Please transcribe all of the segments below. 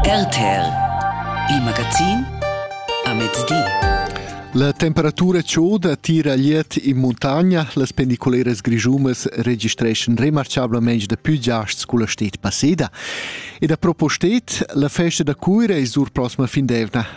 RTL, il magazin a mezdi. La temperatura chauda tira liet in muntagna. Las pendiculeras grischumas registreschan remarcablamein da più giasts culla stet passeda. E da propostet, la festa da Cuira è sur prossima fin d'evna.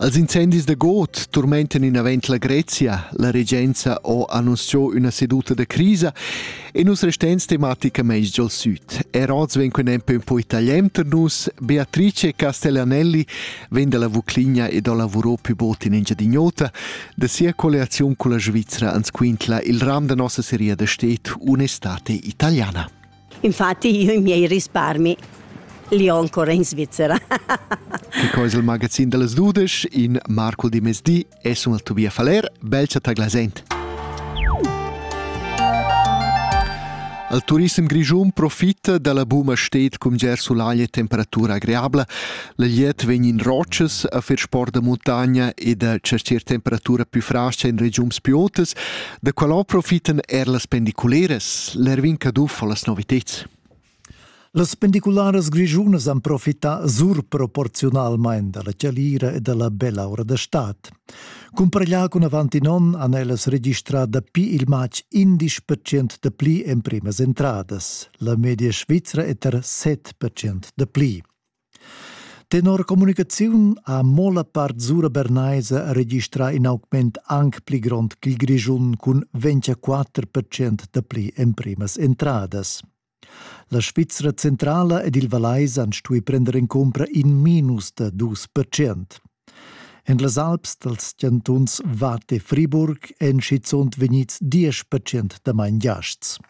Als incendis da god turmentan inavant la Grezia. La regenza ha annunzià üna seduta da crisa e nus restans tematicamaing giòl süd. Er oz vegn quin empe un po italian tar nus. Beatrice Castellanelli vegn dalla Vucligna e do lavurò pü bod in Engiadin'Ota. Da sia colliaziun con la Svizzera ans quintla il ram da nossa seria da stet un'estate italiana. Infatti io i miei risparmi li ho ancora in Svizzera. che co il magazin delles dudesch in Marco di Mesdi e sun al Tobia Faler, belcha taglasent. Al turism grischun profitta dalla buma stet cum ger sulaglia temperatura agreabla. La liet vegn in rochas a fer sport da montagna e da cercer temperatura più frascha in regiums più otas. Da quella profitan er las pendiculeras, l'Erwin Caduff o las noviteds. Las pendicularas grischunas han profità surproporziunalmain da la chalira e da la bella ora da stad. Cumpareglià cun avant in onn han ellas registrà dapi il matg 11% da pli emprimas entradas. La media svizra è tar 7% da pli. Tenor communicaziun ha mo la part sura bernaisa registrà in augment anc pli grond ch'il Grischun cun 24% dapli emprimas entradas. La Svizra centrala ed il Vallais han stuì prender en cumpra in minus da 2%. En las Alps dals chantuns Watt e Friburg èn schizunt vegnids 10% damain giasts.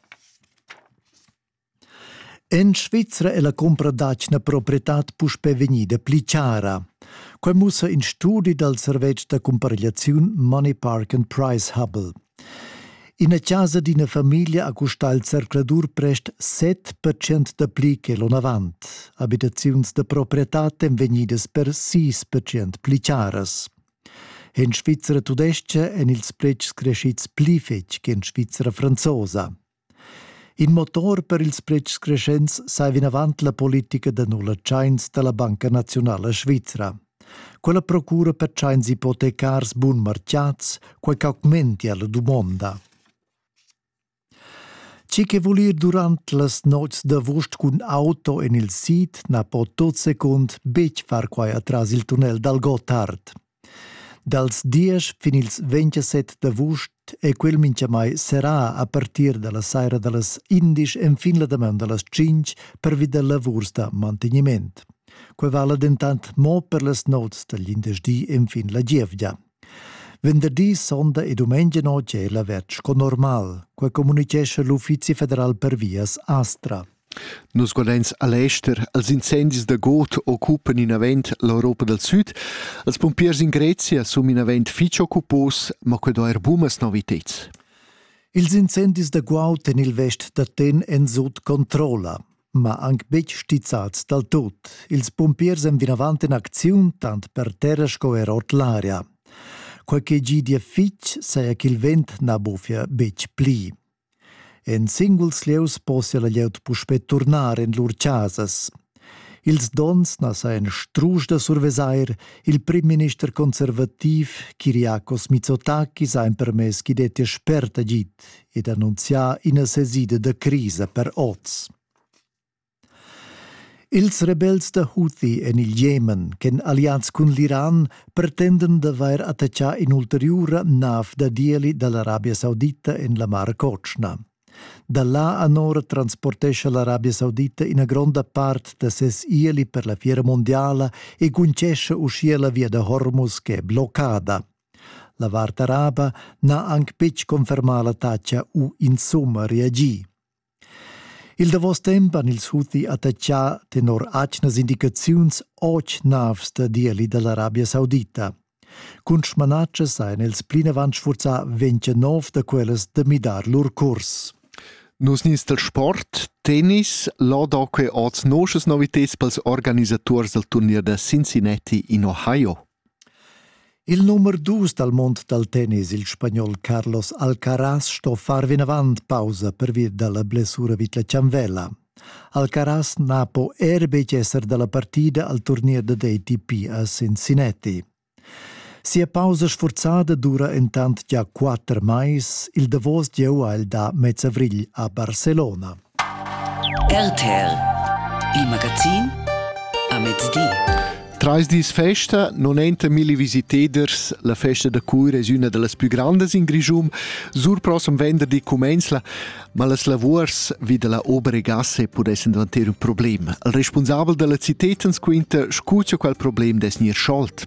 En Svizra è la cumpra d'atgna proprietad puspè vegnida pli chara. Quai mussa in studi dal servetsch da cumparegliaziun Money Park and Price Hubble. Ina chasa d'ina famiglia ha custà il zercladur prest 7% da pli che l'onavant. Abitaziuns da proprietad èn vegnidas per 6% pli charas. En Svizra tudestga èn ils pretschs creschids pli fetg che en Svizra franzosa. In motor per ils pretschs creschents sai vinavant la politica da nulla tschains da la Banca Naziunala Svizra. Quella procura per tschains ipotecars bunmarchiats, quai ch'augmentia la dumonda. Chi che vul ir durant las nots d'avust cun auto en il sid na po tot secund betg far quai atras il tunnel dal Gotthard. Dals diesch fin ils ventisset d'avust è quel mintgamai serrà a partir da la saira da las indesch enfin la damaun da las tschintg pervi da lavurs da mantegniment. Quai vala dentant mo per las nots dal glindesdi enfin la gievgia. Venderdi, sonda e dumengia notg è l'avertg sco normal, quai communitgescha l'Uffizi federal per vias Astra. Nus guardein al ester. Els incendis da god occupan inavent l'Europa dal Süd. Els pumpiers in Grezia sun inavent fich occupos, ma que do eir bumas noviteds. Ils incendis da guaud en il vest d'Aten èn sut controlla, ma anc betg stizzads dal tut. Ils pumpiers èn vinavant en acziun tant per terra sco er ord l'aria. Quai che gidia fitg saja ch'il vent na buffia betg pli. En singuls lieus possia la glieud puspè turnar en lur chasas. Ils donns na sajan strusch da survesair il primminister conservativ Kyriakos Mitsotakis ha empermess ch'i dettia spert agid ed annunzià ina sesida da crisa per oz. Ils rebels da Houthi en il Jemen ch'èn alliads cun l'Iran pretendan d'avair attaccà in'ulteriura nav da d'ieli da l'Arabia Saudita en la Mar Cotschna. Da là anora transportescha l'Arabia Saudita ina gronda part da ses ieli per la fiera mondiala e guntgescha uschia la via da Hormuz ch'è bloccada. La vart araba n'ha anc betg confermà l'attacca u insumma reagì. Il davos temp han ils Houthi attaccà tenor atgnas indicaziuns otg navs da dieli dall'Arabia Saudita. Cun smanatschas ein els plinavant sfurzà ventenov da quellas da midar lur curs. Nus nins del sport, tennis, là da que oz noschas novitads pels organisaturs del turnier da Cincinnati in Ohio. Il numer dus dal mond dal tennis, il spagnol Carlos Alcaraz, sto far vinavant pausa pervi da la blessura vid la chanvella. Alcaraz na po er betg esser da la partida al turnier da DTP a Cincinnati. Sia pausa sforzada dura entant gia quatter mais, il davos gieu ha el da mezzavrigl a Barcelona. RTL Il magazin a mezdi. Trais dis festa non enta milli visiteders, la festa da cura es üna da las plü grandas in Grischun. Sur prossem venderdi comenzla, ma las lavurs vi da la Oberegasse pudessan davanter un problem. Il responsabel da la cited ans quinta scutia qual problem des gnir scholt.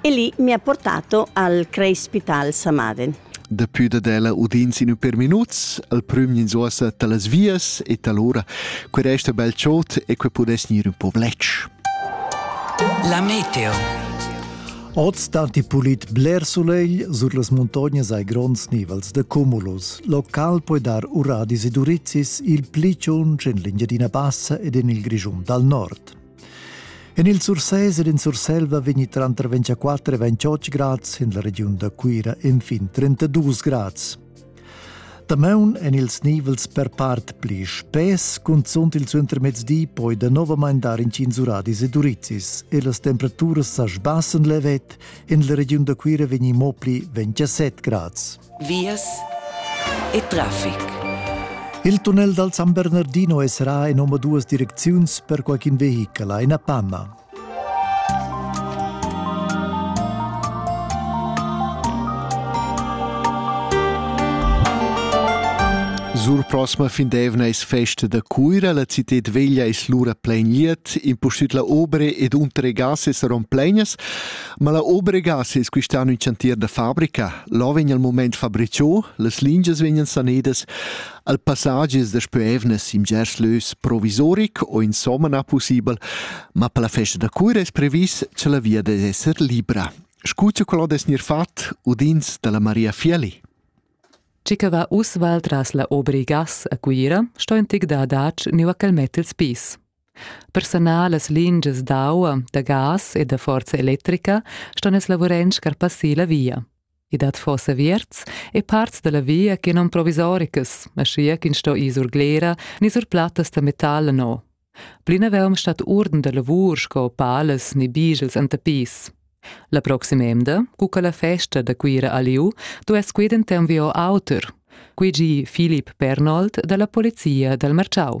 e lì mi ha portato al Crespital Samaden. Dapi dad ella udins in per minuts, al prüm ins ossa talas vias e talora que resta bel chot e que pudess gnir un po vlec. La meteo. Oz datti pulit bler sulegl, sur las muntognas hai gronds nivels de cumulus. Local puoi dar uradis e durizis il pli tschun en l'Engiadina Bassa ed en il Grischun dal nord. En il Sursés ed in Surselva vegni tranter 24 e 28 grads, en la regiun da Cuira enfin 32 grads. Damaun en ils nivels per part pli spess, cunzunt il suentermezdi poi danovamain dar incints uradis ed urizis e las temperaturas sa sbassen levet, en la regiun da Cuira vegni mo pli 27 grads. vias e traffic. Il tunnel dal San Bernardino esrà en omaduas direcziuns per qualcun vehichel a Panama. Sur prosma fin d'evna es festa da Cuira, la cited veglia es lura plain liet, impustüt la obre ed untere gas es rom plegnas. Ma la obregas es quist'an ün chantier da fabrica. Là vegn al mumaint fabrichò, las lingias vegnan sanedas, al passagi es daspö evnas in bgers lös provisoric o insomma na pussibel, ma per la festa da cura es previs cha la via dess esser libra. Scucha qual dess gnir fat udins da la Maria Fieli. Chi che va uss val tras la Obrigas a Cuira sto in tig da adatg niu a quel met ils pis. Personal las lingias d'aua, da gas e da forza electrica ston els lavurend scarpassir la via. I dat fossa vierts e parts dalla via che non provisoricas, aschia ch'ins sto ir sur glera ni sur plattas da metal no. Plinaveum stat urden da lavur sco palas ni bigels anta pis. La proxima emda, cu che la festa da Cuira aliu, duess quident un vio auter, quei gi Filip Pernold dalla polizia dal Marciau.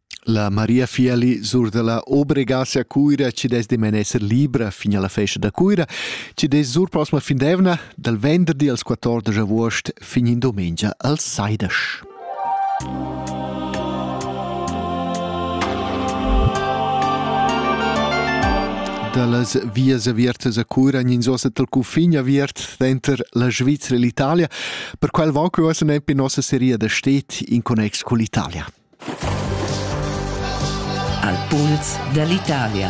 La Maria Fieli surdala obregas a Cuira ci des demen esser libra fin alla festa da Cuira, ci des sur prossima findevna dal venderdi als 14 august fin in domenica als Saidash. dallas vias avertas a Curan in sosa tal cufin aviert denter la Svizzera e l'Italia, per qual va que ossa nempe nossa seria da stet in connex con l'Italia. Al puls dall'Italia.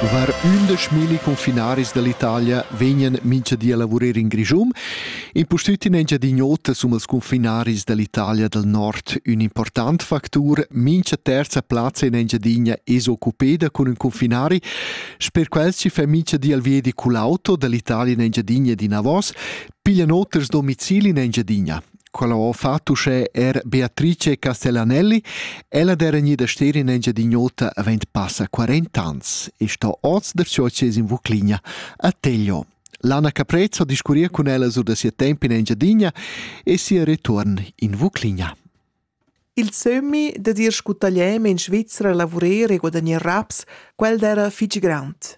Var ündeschmilli confinaris dall'Italia vegnan mincha di a lavurer in Grischun. Impustüt in Engiadin'Ota sun els confinaris dall'Italia dal Nord ün important factur. Mincha terza plazza in Engiadinia es occupeda cun ün confinari. Sper quels ci fa mincha di al viedi cull'auto dall'Italia in Engiadinia ed inavos. Piglian oters domicili in Engiadina. Quella ho fatto uschè er Beatrice Castellanelli. Ella d'era gnida ster in Engiadin'Ota avent passa 40 ans e sto oz der Socies in Vucligna a Teglio. Lana Caprez ho discurria cun ella sur da sia temp in Engiadina e sia return in Vucligna. Il sömmi dad ir scu tagliem in Svizra lavurer e guadagnar raps, quel d'era fich grand.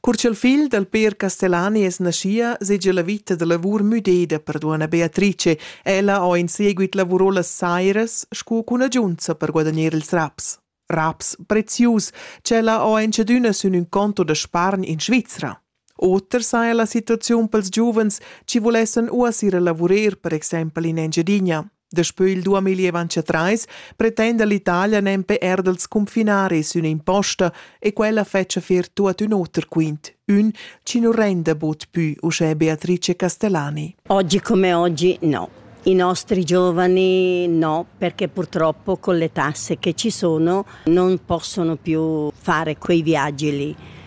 Cur ch'il figl dal Peer Castellani es naschia, segia la vita da lavur müdeda per duonna Beatrice, ella ho in seguit lavurò las sairas scu cunagiunza per guadagner ils raps. Raps prezius, ch'ella ho enchadüna sün ün conto da spargn in Svizra. Oter saja la situaziun pels giuvens chi vulessan uassir a lavurer per exempel in Engiadina. Daspö il 2023 pretenda l'Italia nempe er dals cunfinaris ün'imposta e quella fetscha fer tuot ün oter quint, ün chi nu renda bod pü uschè Beatrice Castellani. Oggi come oggi no. I nostri giovani no, perché purtroppo con le tasse che ci sono non possono più fare quei viaggi lì.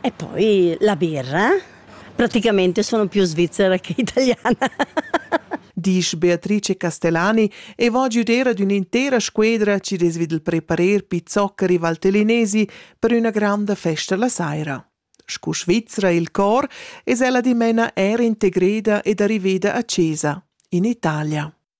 E poi la birra? Praticamente sono più svizzera che italiana. Disch Beatrice Castellani e va giuder ad un'intera squedra ci desvid il preparer pizzocca rivaltelinesi per una granda festa la saira. Scu Svizzera il cor es ella dimena er integreda ed arriveda a Cesa, in Italia.